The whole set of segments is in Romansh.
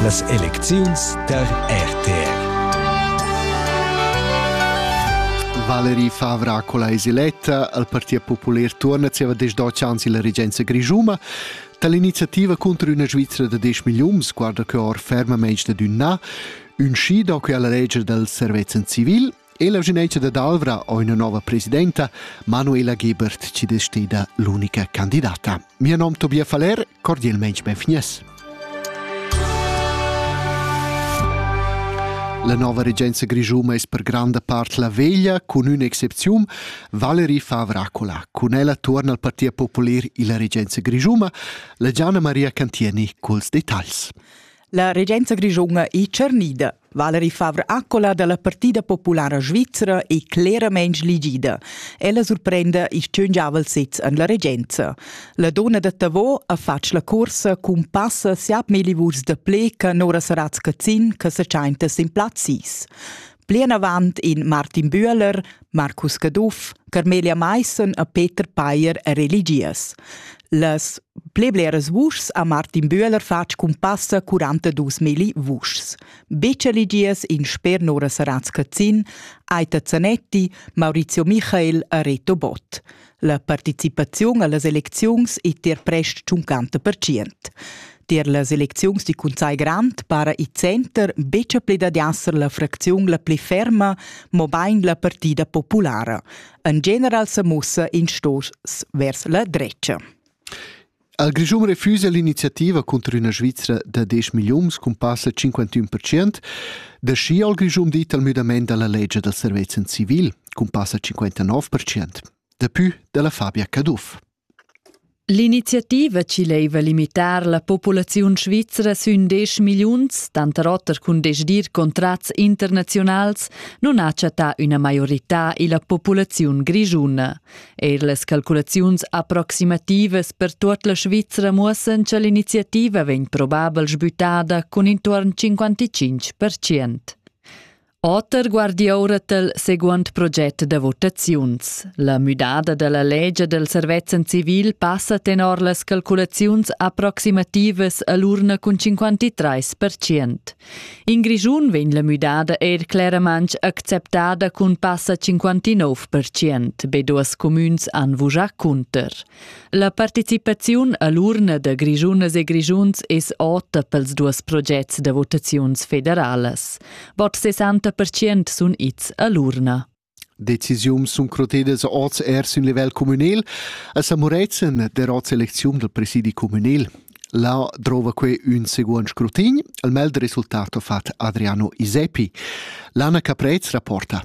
Las elecziuns tar RTR. Valerie Favra Colaisi Letta al Partit Popular turna zieva desch dotg ans illa regenza grischuma. Dall'iniziativa contro üna Svizra da 10 milliuns guarda que or fermamaing dad ün na, ün schi da quella leger dal servezzan civil – E la genetgia dad Alvra ho üna nova presidenta, Manuela Gebert, chi es steda l'unica candidata. Mio nom Tobias Faller, cordialmente benvenies. La nova regenza grigiuma es per granda part la veglia, cun üna excepziun, Valerie Favracola. Cun ella tuorna al Partit Popular illa regenza grigiuma, la Gianna Maria Cantieni culs detagls. La regenza grischuna è tschernida. Valerie Favre-Accola dalla Partida Populara Svizra è cleramain ligida. Ella surprenda ils tschun giavel sez en la regenza. La donna da Tavò ha fatg la corsa cun passa siat melivurs da ple che Nora Saratz-Cazin che sa tschainta sin plaz 6. Plinavant in Martin Bühler, Marcus Caduff, Carmelia Maissen e Peter Payer e religias. Las pli bleras vuschs ha Martin Bühler fatg cun passa 42.000 vuschs. Biceligias in sper Nora Saratz-Cazzin, Aita Zanetti, Maurizio Michael e Reto Bott. La participaziun allas elecziuns ei tier prest tschuncanta pertschient. Tier las elecziuns di Cunzai Grant para il center betg pli dad esser la fracziun la pli ferma, mobein la partida populara. En general sa mussa in stos vers la drecha. Il Grischun refusa l'iniziativa cunter üna Svizra da 10 milliuns cun passa 51 percent. Da schi ha il Grischun dit al müdament da la legge dal servezen civil cun passa 59 percent. Dapü dalla Fabia Caduff. L'iniziativa ci leva limitar la populaziun svizra sün 10 milliuns, tanter oter cun desdir contrats internazionals, non ha chattà üna maiorità illa populaziun grischuna. Eir las calculaziuns approximativas per tuot la Svizra muossan cha l'iniziativa vegn probabel sbüttada cun intuorn 55%. Oter guardi oura tal seguond proget da votaziuns. La müdada da la legia del servezzan civil passa tenor las calculaziuns approximativas all'urna cun 53%. In Grischun vegn la müdada eir cleramaing acceptada cun passa 59%. Be duas cumüns han vujà cunter. La participaziun a l'urna da Grischunas e Grischuns es ota pels duos progets da votaziuns federalas. Bod 60% sun its a l'urna. Decisiuns sun crotedas hoz eir sün livel cumünel a San Murezzan der hoz elecziun dal presidi cumünel. Là drova que ün seguond scrutin, al mel da resultat ho fat Adriano Iseppi. Lana Caprez rapporta.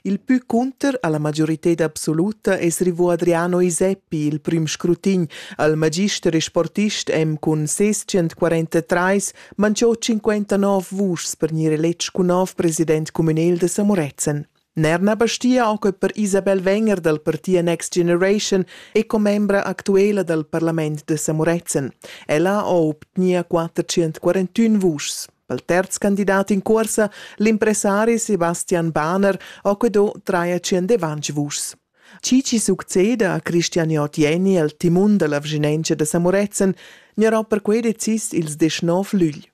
Il pü cunter alla majorited absoluta es rivò Adriano Iseppi, il prüm scrutin, al magister e sportist M cun ses 143 man giò 59 vuschs per gnir eletg cun nov president cumünel da Samorezen. Nerna Bastia ho que per Isabel Wenger dal parti Next Generation e commembra actuela dal parlament da Samorezen. Ella ho obtgnia 441 vuschs. Pel terz candidat in corsa, l'impressari Sebastian Bahner ho que do 350 vuschs. Chi chi succeda a Cristian Otieni el timun dalla vischinanza da Samorezen gnarà perquei decis ils deschnov lügl.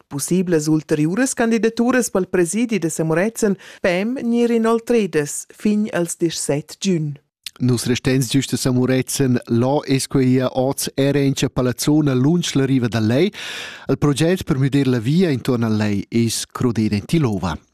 Pussiblas ulteriuras candidaturas pel presidi da Samorezen pem gnir inoltredas fin als 17 giun. Nus restens giusta Samurezen, là es quia oz era in cha palazzona lunsch la riva da lei. Il proget per müder la via intorn a lei es crodere in Tilova.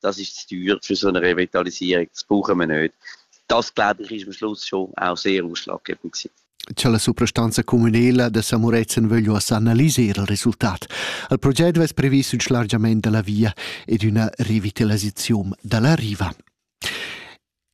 das ist zu teuer für so eine Revitalisierung, das brauchen wir nicht. Das, glaube ich, ist am Schluss schon auch sehr ausschlaggebend gewesen. Cha la suprastanza communela da Samurezen vöglio analiser il resultat. Il proget vess previs ün schlargiament da la via ed üna revitalisaziun da la riva.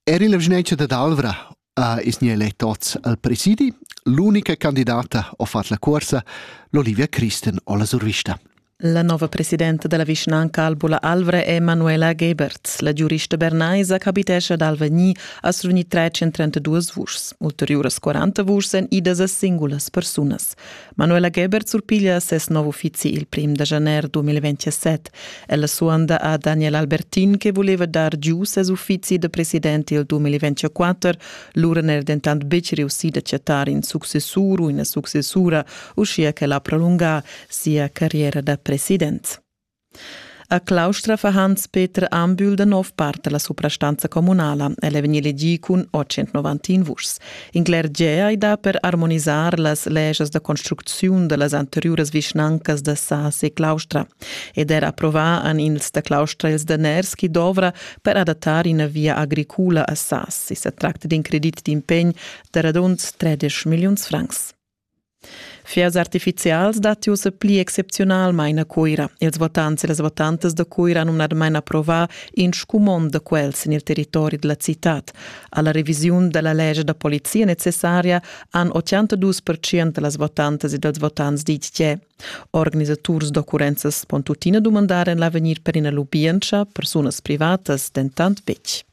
Era la vischnanca dad Alvra ha es gnü elet oz al presidi. L'unica candidata ho fat la cuorsa, l'Olivia Christen o la survista. La nova presidenta della vischnanca Albula Alvra è Manuela Geberts. La giurista bernaisa capitescha ad Alvagni a survgnir 332 vuschs. Ulteriuras 40 vuschs èn idas a singulas persunas. Manuela Geber surpiglia ses nov uffizi il prim da janer 2027. Ella suanda a Daniel Albertin che voleva dar giu ses uffizi da president il 2024, lura n'era dentant betg reussì da chattar in successur u ina successura, uschia ch'el ha prolungà sia carriera da president. A Claustra fa Hans-Peter Ambühl da nov part la suprastanza communala. El è vegnì elegì cun 891 vuschs. In cler gea è dà per armonisar las legias da construcziun da las anteriuras vischnancas da Sas e Claustra ed er approvar en ils da Claustra ils daners chi dovra per adattar ina via agricula a Sas. I sa tracta d'in credit d'impegn da radund 13 milliuns francs. Fiers artificials datti ussa pli excepziunalmain a Cuira. Ils votants e las votantas da Cuira han numnadamain approvà in scumond da quels en il territori da la citad. Alla revisiun da la legge da polizia necessaria han 82% da las votantas e dals votants ditg che Organisaturs d'occurrenzas pon tuttina dumandar en l'avegnir per ina lubientscha, persunas privatas dentant betg.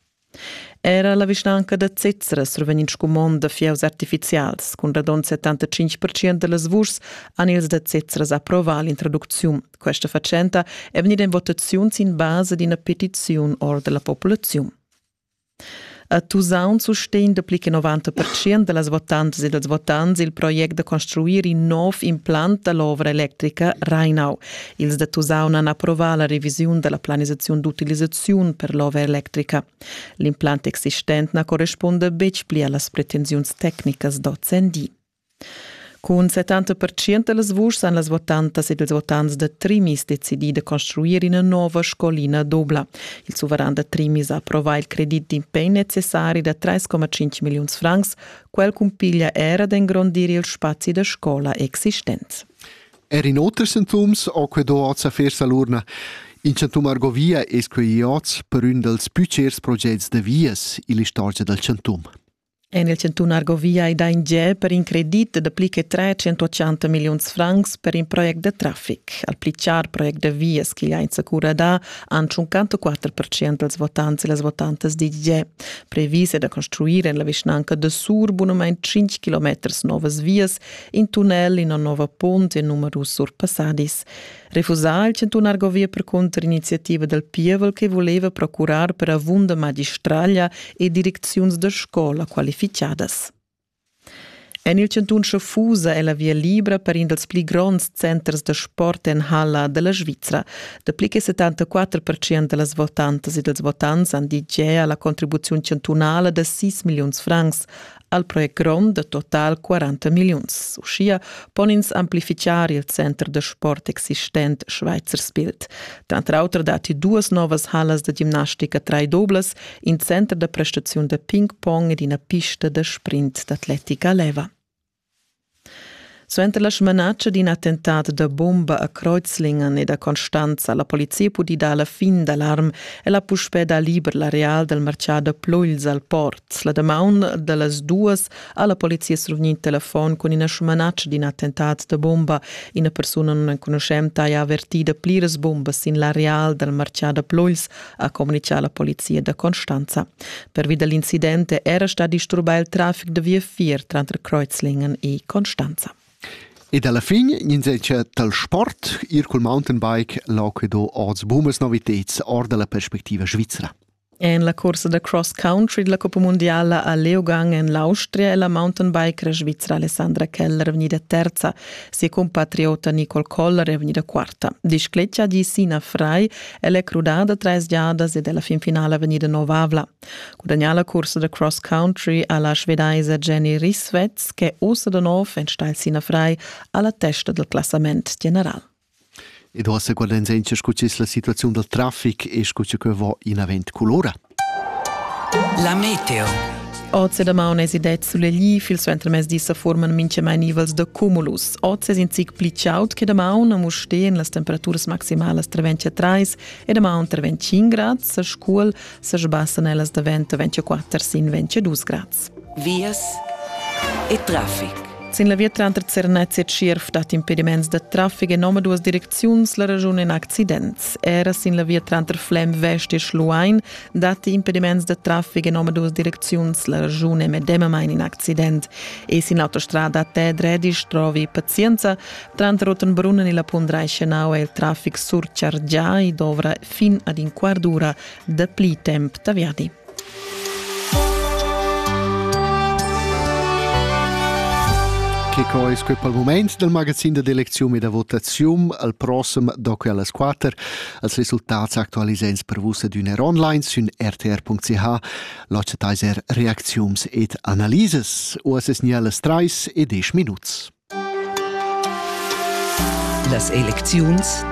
Era la vischnanca da Zezzera survegn in scumond da fieus artifizials. Cun radund 75% da las vuschs han ils da Zezzera approvà l'introducziun. Questa fatschenta è vegnida en votaziun sin basa d'ina petiziun or della populazione. A Tusaun sustegn dapli che 90% da las votantas e dals votants il project da construir in nov implant da l'ovra electrica Rheinau, Ils da Tusaun han approvà la revisiun da la planisaziun d'utilisaziun per l'ova electrica. L'implant existent na correspunda betg pli a las pretensiuns tecnicas d'ozendi. Cun 70% da las vuschs han las votantas ed ils votants da Trimis decidì da construir ina nova scolina dubla. Il suveran da Trimis ha approvà il credit d'impegn necessari da 3,5 milliuns francs, quel cumpiglia era d'engrondir il spazi da scola existent. Er in oter sintums ho quei do oz a fer salurna. In chantum Argovia es quei oz per ün dals più cers progets da vias ill'istorgia dal chantum. En il Cantun Argovia è da in giè per in credit da pli che 380 milliuns francs per in project da traffic. Al pli char project da vias che ha insacura da han 54% dels votants e las votantas di giè. Previs è da construire en la vischnanca de Sur bunament 5 km novas vias In tunnel, ina nova punt e numerus surpassadis. Refusà il chantunar govia per contriniziativa dal pievel che voleva procurar per avunda magistraglia e direcziuns da scola qualificadas. En il cantun Schaffusa è la via libra per in dals pli gronds centers da sport en Halla della Svizzera. Dapli che 74% da las votantas e dels votants han dit gea alla contribuzione chantunala da 6 milions francs, Al project grond da total 40 milliuns. Uschia pon ins amplifichar il center da sport existent Schweizers Bild. Tranter auter datti duas novas hallas da gimnastica traidoblas, in center da prestaziun da ping-pong ed ina pista da sprint d'atletica leva. Suenter la smanatscha d'in attentat da bumba a Kreuzlingen e da Constanz ha la polizia pudì dar la fin d'alarm e l'ha puspè dà liber l'areal dal martgà da Plugls al port. La damaun da las duas ha la polizia survegnì in telefon cun ina smanatscha d'in attentat da bumba. Ina persuna nunenconuschenta ha avertì da pliras bumbas sin l'areal dal martgà da Plugls ha communitgà la polizia da Constanza. Pervi da l'incident era stà disturbà il traffic da viafier tranter Kreuzlingen e Constanza. E dalla fin gnenzelcha dal sport ir cul mountainbike l'oquido oz bumas noviteds or dalla perspectiva svizra. En la corsa da cross country della Coppa Mondiala a Leogang en l'Austria è la mountainbikera svizra Alessandra Keller vegnida terza, sia compatriota Nicole Koller è vegnida quarta. Discletga di Sina Frei Ella è crudada trais giadas ed è la fin finala vegnida novavla. Gudagnà la cursa da cross country ha la svedaisa Jenny Risvetz, che ussa da nov enstagl Sina Frei, a la testa del classament general. Ed ossa guardains encha scu la situaziun dal trafic e scu che va in avant culora. La meteo. Oz e damaun esi det sulegli, fil suenter mes dis sa forman minche mai nivels da cumulus. Oz es in zic pli chaud che damaun, a Muste en las temperaturas maximalas tra 23 e damaun tra 25 grads, a Scuol sa sbassan ellas da vento 24 sin 22 grads. vias e traffic. Sin la via tranter Zernez e Tschierv dat impediments da traffic en omaduas direcziuns la raschun in accidents. Era sin la via tranter Flem Vest e Schluein datti impediments da traffic en omaduas direcziuns la raschun è medemamain in accident. E sin l'autostrada Tedredisch trovi pazienza. Tranter Rottenbrunnen e la Pundreischenau è il traffic surchargià e dovra fin ad in quart d'ura dapli temp da viadi. Che co es que pel mumaint dal magazin da d'elecziun e da votaziun al prossem doc e allas 4 als resultats aktualisents per vus ed üner online sün rtr.ch l'occettaiser reacziuns ed analises. Uas es nialas 3 e 10 minuts. Las elecziuns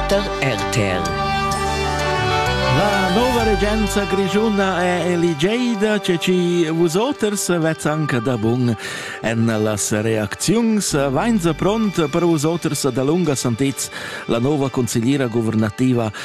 da RTL. La nova regenza grischuna è eligeida, ce ci vusoters vezzan che da bun en las reacziuns vainsa pront per vusoters da lunga santez la nova consigliera guvernativa